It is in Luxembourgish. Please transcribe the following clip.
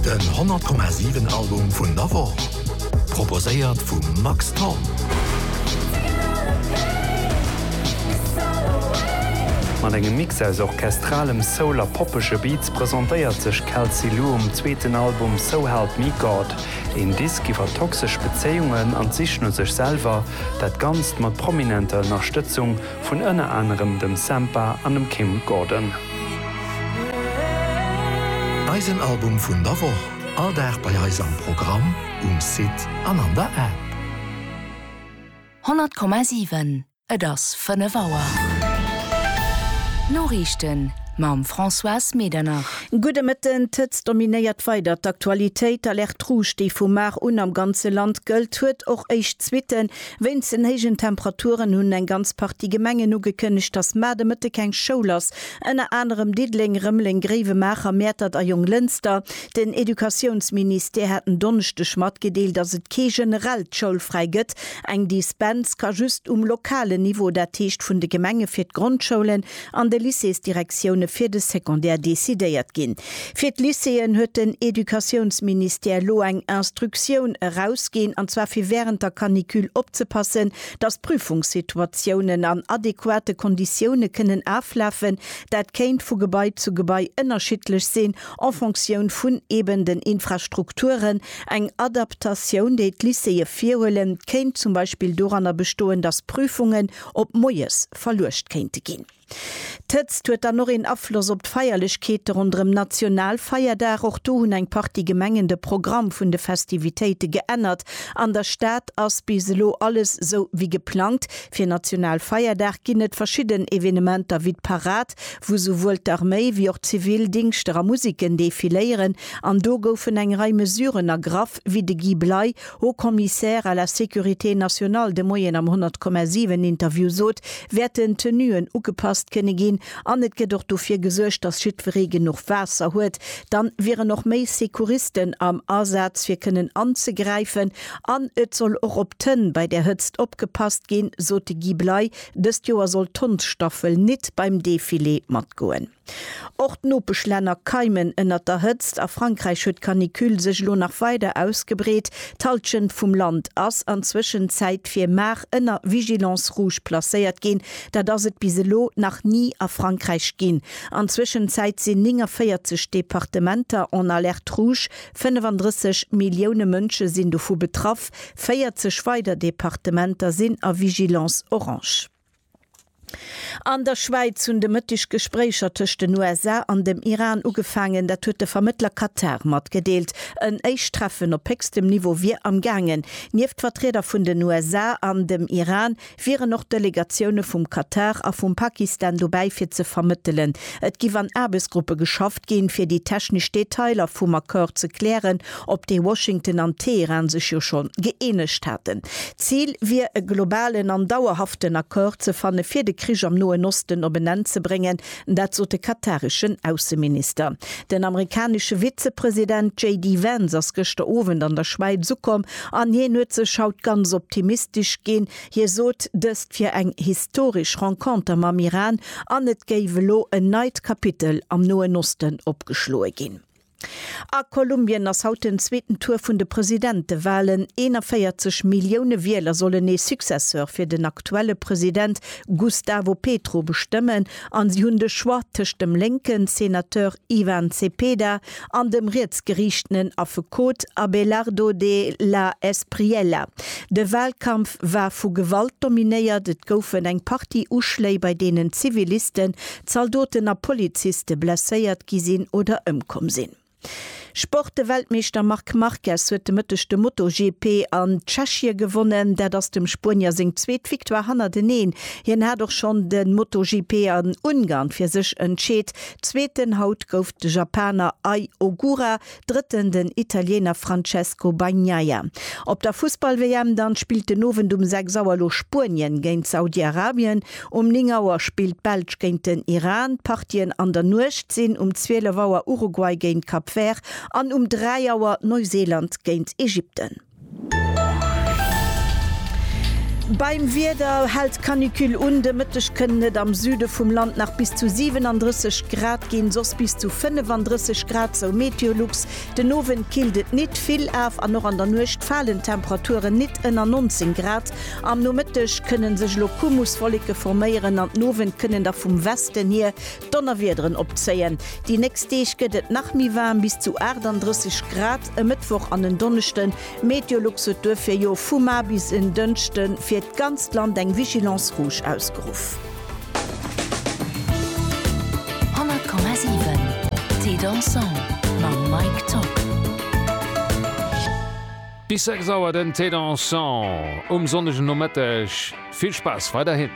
Den 100,7 Album vun der Woch, proposéiert vum Max Thorn. Mat engem Mix aus orchestralem Soul a poppege Beats presentéiert sech Kelsey Lu um zweeten Album So Help Me God. Een Disk iwwer toxesch Bezéiungen an d'Sich no sech selwer, dat Ganzt mat prominenter Ënnerstëtzung vun ënner anerem dem Sampha an dem Kim Gordon. Eisen Album vun der Woch, all Dag bei eis am Programm, um Site an an der App. 100,7 Et ass 5 Auer. D'Noriichten mam Françoise Medernach. Gudde Mëtten. D'Hëtzt dominéiert weider d'Aktualitéit. D'Alerte Rouge, déi vu mar un am ganze Land gëllt, huet och éischt Suitten. Wéinst den héijen Temperaturen hunn eng ganz Partie Gemengen ugekënnegt, dass mar de Mëtte keng Schoul ass, ënner anerem Diddeleng, Rëmeleng, Gréiwemaacher, Mäertert a Jonglënster. Den Educatiounsministère hat en Donneschdeg matgedeelt, dass et kee generellt Schoulfräi gëtt. Eng Dispens ka just um lokalen Niveau, dat heescht vun de Gemenge fir d'Grondschoulen, an de Lycéesdirektioune fir de Secondaire decidéiert ginn. Fir d'Lycéeën huet den Educatiounsministère elo eng Instructioun erausginn, an zwar fir wärend der Canicule opzepassen, datt d'Prüfungssituatiounen an adequate Konditioune kënnen aflafen. Dat kéint vu Gebai zu Gebai ënnerschiddlech sinn, en Fonctioun vun eben den Infrastrukturen. Eng Adaptatioun, déi d'Lycéeë virhuelen, kéint zum Beispill doranner bestoen, datt Prüfungen, op moies verluecht kéinte ginn. D'Hëtzt huet dann och een Afloss op d'Feierlechkeete ronderëm Nationalfeierdag. Och do hunn eng Partie Gemengen de Programm vun de Festivitéite geännert. An der Stad ass bis elo alles sou wéi geplangt. Fir Nationalfeierdag ginn et verschidden Evenementer wéi d'Parad, wou souwuel d'Arméi wéi och d'Zivildingschter a Musiken defiléieren. An do goufen eng Rei Mesuren ergraff, wéi de Guy Bley Haut Commissaire à la Sécurité nationale de Moien am 100,7 Interview sot, wäerten d'Tenuen ugepasst kënne ginn an et gëtt och dofir gesuergt, datt jiddweree genuch Waasser huet. Dann wieren och méi Secouristen am Asaz fir kënnen anzegräifen an et soll och op d'Hënn bei der Hëtzt opgepasst ginn, sot de Guy Bley. Dëst Joer soll d'Hondsstaffel nit beim Defilé matgoen. Och d'Nopeschlänner keimen ënnert der Hëtzt. A Frankräich huet d'Canicule sech elo nach weider ausgebreet. D'Hallschent vum Land ass an Zwëschenzäit fir mar ënner Vigilance rouge placéiert ginn. Dat ass et bis elo nach ni a Frankräich ginn. An Zwëschenzäit sinn 49 Departementer en alerte rouge. 35 Millioune Mënsche sinn dovu betraff. 40 weider Departementer sinn a Vigilance orange. An der Schwäiz hunn de Mëtteg d'Gespréicher tëscht den USA an dem Iran ugefaangen. Dat huet de Vermëttler Katar matgedeelt. En éischt Treffen op héchstem Niveau wier am gaangen. Nieft Vertrieder vun den USA an dem Iran wieren och Delegatioune vum Katar a vum Pakistan dobäi fir ze vermëttelen. Et giff an Aarbechtsgruppe geschafft ginn, fir déi technesch Detailer vum Accord ze klären op dee Washington an Teheran sech jo schonn gëeenegt haten. D'Zil wier e globalen an dauerhaften Accord ze fanne fir de Krich am Noen Osten op en Enn ze bréngen, dat sot de katareschen Ausseminister. Den amerikanesche Vizepresident JD Vance ass gëschter Owend an der Schwäiz ukomm an hien huet sech haut ganz optimistesch ginn. Hie sot dëst wier eng historesch Renconter mam Iran an et géif elo en neit Kapitel am Noen Osten opgeschloe ginn. A Kolumbien ass haut den zweeten Tour vun de Presidentewalen. 41 Millioune Wieler sollen ee Successeur fir den aktuelle President Gustavo Petro bestëmmen an si hunn de Choix tëscht dem lénken Senateur Ivan Cepeda an dem rietsgeriichtenen Affekot Abelardo de la Espriella. De Walkampf war vu Gewalt dominéiert, et goufen eng Partie Uschléi bei deenen Ziviliste Zaldoten a Poliziste blesséiert gi sinn oder ëmkomm sinn. Sport, De Weltmeeschter Marc Marquez huet de Mëtteg de MotoGP an Tschechie gewonnen. Dat ass dem Spuenier seng zweet Victoire hannerteneen. Hien hat och schonn de MotoGP an Ungarn fir sech entscheet. Zweeten haut gouf de Japaner Ai Ogura. Drëtten den Italiener Francesco Bagnaia. Op der Fussball-WM dann spillt den Owend um 6 Auer elo Spuenien géint Saudi-Arabien. Um 9 Auer spillt d'Belsch géint den Iran. D'Partien an der Nuecht sinn um 12 Auer Uruguay géint Cap Vert an um 3 Auer Neuseeland géint Ägypten. Beim Wieder hält d'Canicule un, de Mëtteg kënnen et am Süde vum Land nach bis zu 37 Grad ginn, soss bis zu 35 Grad, sou Meteolux. Den Owend killt et nit vill af an och an der Nuecht falen d'Temperaturen nit ënner 19 Grad. Am Nomëtteg kënne sech elo Kumuswolleke forméieren an den Owend kënnen da vum Westen hier Donnerwiederen opzéien. Déi nächst Deeg gëtt et nach méi waarm, bis zu 38 Grad e Mëttwoch an en Donneschden. Meteolux huet duerfir jo vu mar bis en Dënschde fir d'ganzt Land eng Vigilance rouge ausgeruff. Bis 6 Auer den Thé Dansant um sonnege Nomëtteg. Vill Spaass weiderhin!